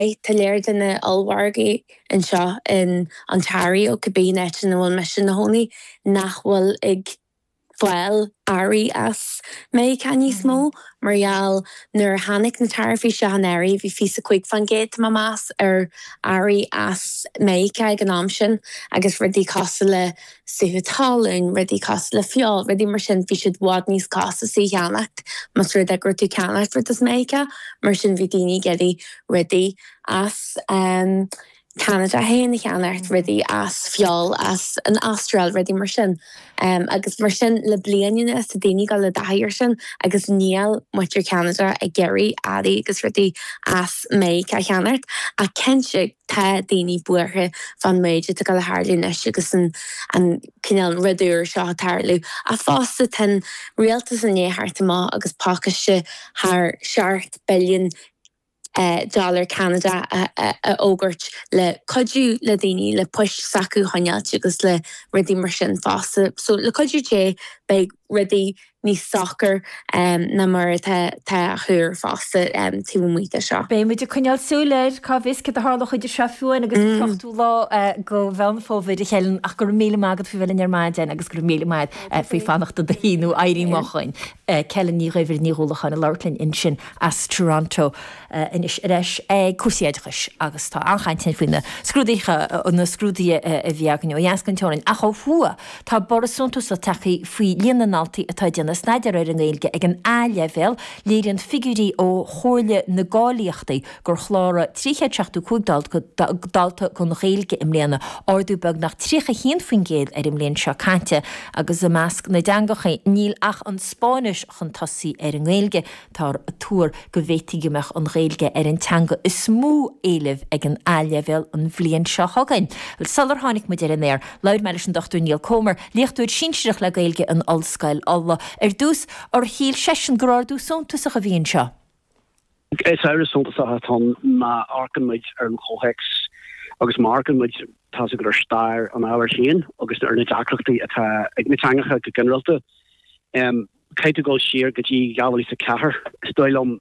Tá léar de na ollmhargaí anseo in Ontario, cibé áit ina bhfuil mise 'mo chónaí, nach bhfuil ag fáil earraí as Meiriceá níos mó mar gheall nuair a tháinig na taraifí seo i bhfeidhm bhí fiche is a cúig faoin gcéad de mo mheas ar earraí as Meiriceá ag an am sin agus rudaí cosúil le sútha talún, rudaí cosúil le feoil, rudaí mar sin, bhí siad i bhfad níos costasaí a cheannacht. Más rud é go raibh tú ceannacht rud as Meiriceá, mar sin, bhí daoine ag iarraidh rudaí as Ceanada féin a cheannacht, rudaí as feoil as an Astráil, rudaí mar sin. Agus mar sin, le bliain anuas, tá daoine ag dul i dtaithí ar sin agus níl muintir Cheanada ag iarraidh earraí agus rudaí as Meiriceá a cheannacht. Ach cinnte. Tá daoine buartha fán méid atá le tharlú anois agus an cineál rud úr seo ag tarlú, ach fosta tá an rialtas i ndiaidh theacht amach agus pácaiste thar seacht billiún dollar Ceanada a fhógairt le cuidiú le daoine le poist s'acu a choinneáilt agus le rudaí mar sin fosta. So le cuidiú Dé beidh rudaí Níos socra ná mar atá á thuar fosta taobh amuigh de seo. Beidh muid ag coinneáil súil air, cá bhfios céard a tharlóidh idir seo féin agus an t-ochtú lá de Mheán Fómhair, a Helen, ach go raibh míle maith agat faoi bheith linn ar maidin agus go raibh míle maith faoi fanacht i do shuí nó éirí moch dúinn. Helen Ní Dhuibhir, Ní Dhúlacháin ag labhairt linn ansin as Toronto. anois ar ais ag cúrsaí oideachais agus tá an-chaint ann faoi na scrúduithe, na scrúduithe a bhí againn ó dheas den teorainn. Ach ó thuaidh, tá borradh suntasach tagtha faoi líon na ndaltaí atá ag déanamh staidéir ar an nGaeilge ag an A-Leibhéal, léiríonn figiúirí ó Chomhairle na gCáilíochtaí gur chláraigh 375 dalta don Ghaeilge i mbliana, ardú beagnach 31% ar an mbliain seo caite, agus i measc na dteangachaí, níl ach an Spáinnis chun tosaigh ar an nGaeilge. Táthar ag tuar go bhféadfadh go mbeadh an Ghaeilge ar an teanga is mó éilimh ag an A-Leibhéal an bhliain seo chugainn. Sular tháinig muid ar an aer, labhair mé leis an Dr Niall Comer, Léachtóir Sinsearach le Gaeilge in Ollscoil Uladh. Ar dtús, ar shíl seisean gur ardú suntasach a bhí anseo. Is uimhir shuntasach atá ann má amharcann muid ar an chomhthéacs agus má amharcann muid, tá's agat, ar stair an ábhair féin agus ar na deacrachtaí atá ag na teangacha go ginearálta. Caithfidh tú dul siar go dtí 2004 is dóigh liom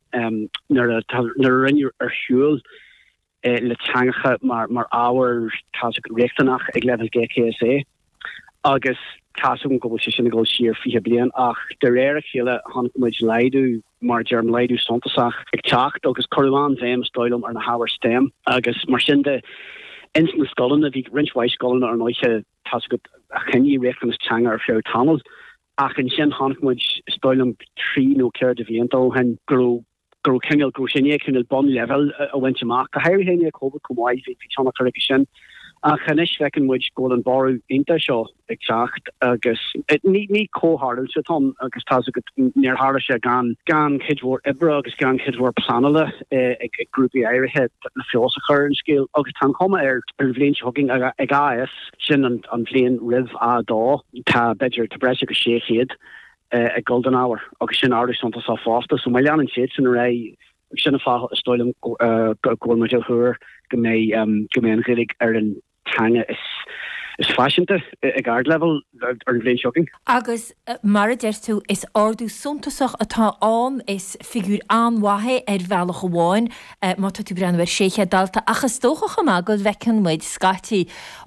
nuair a rinneadh ar shiúl le teangacha mar ábhar, tá's agat, riachtanach ag leibhéal GCSE agus tá's agam go bhfuil sé sin ag dul siar 20 bliain ach de réir a chéile chonaic muid laghdú mar a deirim, laghdú suntasach ag teacht agus cuireadh an-bhéim is dóigh liom ar na hábhair stem agus mar sin de. Ins na scoileanna bhí roinnt mhaith scoileanna ar ndóighe, tá's agat, a choinnigh riachtanas teanga ar feadh tamaill. Ach ansin chonaic muid, is dóigh liom trí nó ceithre de bhlianta ó shin, go raibh, go raibh cineál, go raibh sé i ndiaidh cineál bonn leibhéil a bhaint amach, go háirithe i ndiaidh Covid chomh maith, bhí tionchar aige sin. Ach anois feiceann muid go bhfuil an borradh iontach seo ag teacht agus ní comhtharlú é sin agus tá's agat, níor tharla sé gan, gan cuid mhór oibre agus gan cuid mhór pleanála ag grúpaí áirithe le feabhas a chur ar an scéal agus tá an chuma ar an bhliain seo chugainn, ag AS, sin an bhliain roimh A2. Tá b'fhéidir tá breis agus 600 ag dul don ábhar agus sin ardú suntasach fosta. So má leanann siadsan ar aghaidh ag sin fáth is dóigh liom go bhfuil muid a thuar go mbeidh go mbeidh an Ghaeilge ar an teanga is is faiseanta ag ardleibhéal ar an bhliain seo chugainn. Agus mar a deir tú, is ardú suntasach atá ann, is figiúir an-mhaith é ar bhealach amháin má tá tú ag breathnú ar 600 dalta ach is dócha chomh maith go bhfeiceann muid scaití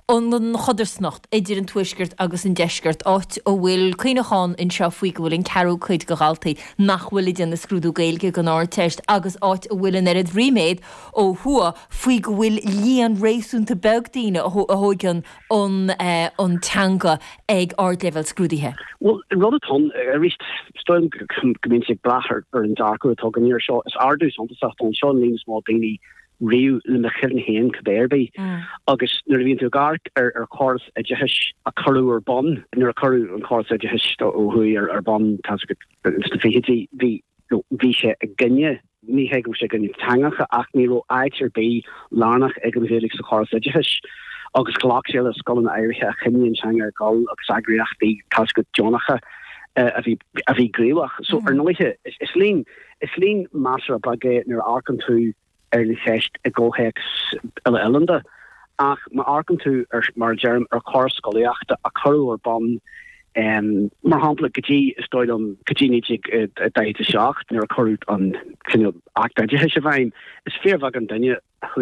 an chodarsnacht idir an Tuaisceart agus an Deisceart, áit a bhfuil cuimhneachán anseo faoi go bhfuil an ceathrú cuid de dhaltaí nach bhfuil ag déanamh scrúdú Gaeilge don Ardteist agus áit a bhfuil an oiread ríméad ó thuaidh faoi go bhfuil líon réasúnta beag daoine a thóigeann an teanga ag ardleibhéal scrúdaithe. Bhuel, an rud atá ann, arís, is dóigh liom go mbíonn sé ag brath ar an dearcadh atá againn air seo, is ardú suntasach é seo an líon is mó daoine riamh le mo chuimhne féin cibé ar bith agus nuair a bhíonn tú ag amharc ar chóras oideachais a cuireadh ar bun, nuair a cuireadh an córas oideachais ó thuaidh ar bun, tá's agat, sna fichidí, bhí, bhí sé i gcoinne, ní hé go raibh sé i gcoinne teangacha, ach ní raibh áit ar bith lárnach ag an Ghaeilge sa chóras oideachais agus ghlac sé le scoileanna áirithe a choinnigh an teanga ag dul agus eagraíochtaí, tá's agat, deonacha a bhí gníomhach. So, ar ndóighe, is líon. Is líon measartha beag é nuair a amharcann tú ar an cheist i gcomhthéacs uile-oileánda, ach má amharcann tú, mar a deirim, ar chóras scolaíochta a cuireadh ar bun, mar shampla, go dtí, is dóigh liom, go dtí 1947 nuair a cuireadh an cineál Acht Oideachais i bhfeidhm, is fíorbheagán duine a chuaigh ar